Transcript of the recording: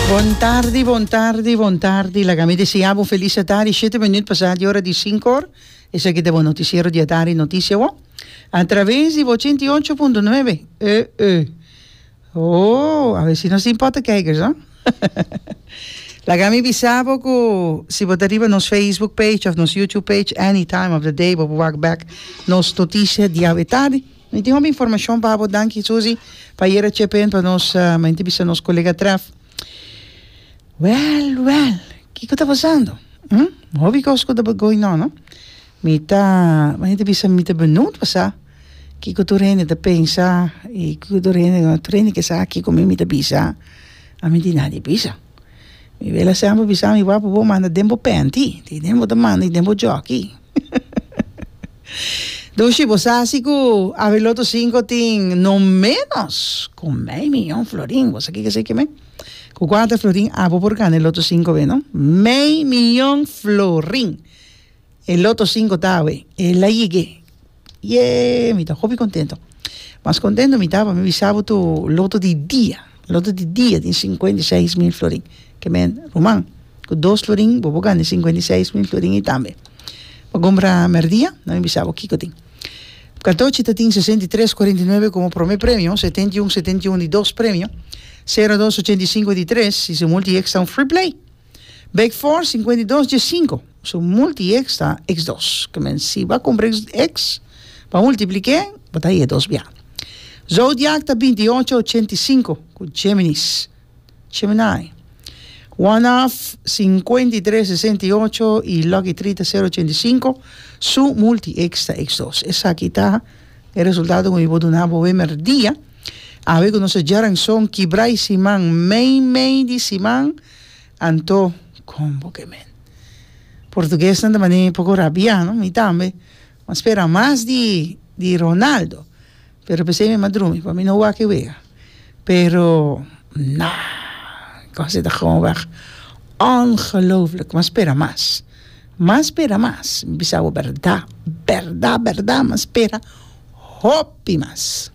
Bon tardi, bon tardi, bon tardi. Laga mi desea bo felis atari. Shete minut pasa di ora di sinku òr. Esaki ta bo notisiero di atari, Notisia Awor! A traves di bo ochenta i ocho punto nuebe. E e. Ooh, a bes nos tin pòttekijkers, no? Laga mi bisa bo ku si bo ta riba nos Facebook page òf nos YouTube page, any time of the day bo por wak bèk nos notisia di awe tardi. Mi tin hopi informacion pa habo danki Susi pa ayer a chepen pa nos menti bisa nos colega traf well well kico ta pasando hm hopi cos cu ta going on no mi ta menti bisa mi ta benoet pa sa kico tur hende ta pensa y kico tur hende tur hende kesa kico mi mi ta bisa ami tin nadie bisa. Mi bela sèn bo bisa mi wou pa bo manda den bo pènti tin den bo ta manda y den bo jòki Doshi bo sa si ku Avi Loto Sinko tin no ménos ku mei miyon florin bo sa kiko seki men ku kuanta florin abo por gana e Loto Sinko be no mei miyon florin E loto sinko ta awe e la yig'e yee mi ta hopi kontento mas kontento mi ta pasobra mi sa bo tur loto di dia loto di dia tin sinkuenta i seis mil florin ke me ruman ku dos florin bo por gana e sinkuenta i seis mil florin ei tambe pa kumpra merdia mi bisa bo kiko tin katochi ta tin sesenta i tres kuarenta i nuebe komo prome premio setenta i un setenta i un di dos premio sero dos ochenta i sinku di tres si se multi eksta un free play. Bek for sinkuenta i dos dje sinku. So multi eks ta eks dos. Ke men si bo a kumpra eks eks pa multipliké bo ta hia dos bia. Zodiak ta binti i ocho ochenta i sinku ku Géminis, Gemini. One half sinkuenta i tres sesenta i ocho i lucky three ta sero ochenta i sinku. Su multi eks ta eks dos. Esaki ta e resultado ku mi por duna bo awe merdia. Awe ku nos a djaran son kibra e siman mei mei di siman. Anto, Con bo ke men? Portuguesnan ta manera poko rabia, no? Mi tambe. Mi a spera mas di di Ronaldo. Pero p'esei mi a drumi, pa mi no wak e wega. Pero, na, e kos ta gewoonweg ongelooflijk. Mi a spera mas. Mi a spera mas. Mi bisa bo bèrda, bèrda, bèrda mi a spera hopi mas.